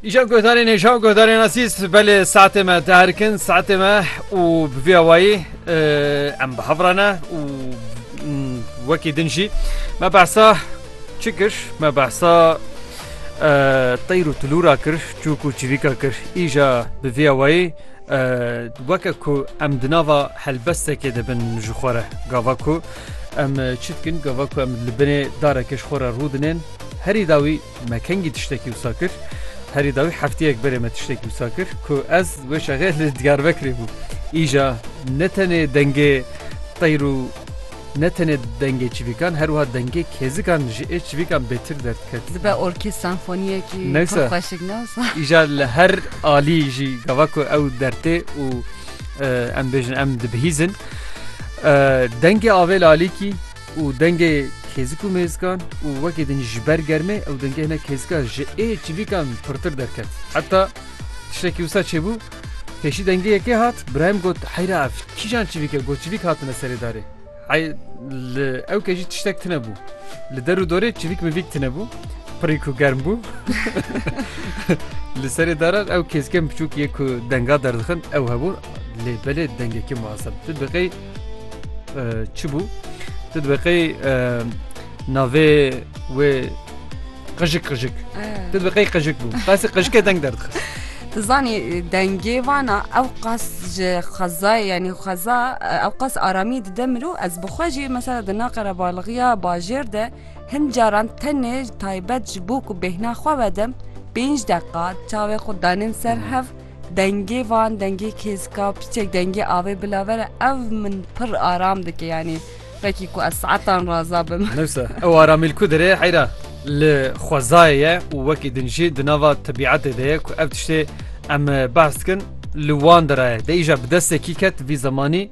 Îşev guhdarên hêja û guhdarên asîs belê saetê me diherikin saetê me û bi vî awayî em bi hevrane û wekî din jî me behsa çi kir me behsa teyr û tilûra kir çûk û çivîka kir îja bi vî awayî weke ku em di nava helbestekê dibin ji xwe re gava ku em çi dikin gava ku em li binê dareke ji xwe re rû dinên Herî dawî me kengî tiştekî wisa kir. Herî dawî hefteyek berê me tiştekî wisa kir ku ez wê şexê li Diyarbekirê bûm. Îja ne tenê dengê teyr û ne tenê dengê çivîkan her wiha dengê kêzikan ji ê çivîkan bêtir derdiket. Dibe orkê senfoniyekî pir xweşik ne wisa. Îja li her alî jî gava ku ew dertê û em bêjin em dibihîzin. Dengê avêl alîkî. û dengê kêzik û mêzikan û wekî din ji ber germê ew dengê hinek kêzika ji ê çivîkan pirtir derket. Heta tiştekî wisa çêbû, pêşî dengê yekê hat, Brahim got heyra ev kîjan çivîk e got çivîk hatine serê darê. Hey li ew kejî tiştek tine bû. Li der û dorê çivîk mivîk tine bû. Pirî ku germ bû. li serê daran ew kêzken biçûk yê ku denga derdixin ew hebûn lê belê dengekî muhaseb. Tu biqey Çi bû? Tu dibeqey navê wê qijik qijik. Tu dibeqey qijik bû. Qasî qijikê deng derdixist. Tu zanî dengê vana ew qas ji xezayê yanî xeza ew qas aramî dide mirû ez bi xwe jî mesela di na qerebalixiya bajêr de hin caran tenê taybet ji bo ku bêhna xwe vedim pênc deqa çavê xwe danên ser hev Dengê van dengê kêzka piçek dengê avê bila vera ev min pir aram dike yanî vekî ku ez saetan raza bim. Newsa ew aramîl ku dirê heyra li xwezayê ye û wekî din jî di nava tebîetê de ye ku ev tiştê em behs dikin li wan de re ye. Dê îja bi destê kî ket vî zemanî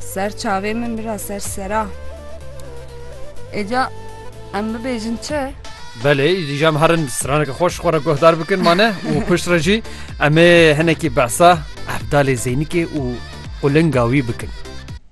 Ser çavê min bira ser sera. Êca em bibêjin çi? Belê îdî jam herin bi straneke xweş xwe re guhdar bikin mane û pişt re jî em ê hinekî behsa Evdalê Zeynikê û qulinga wî bikin.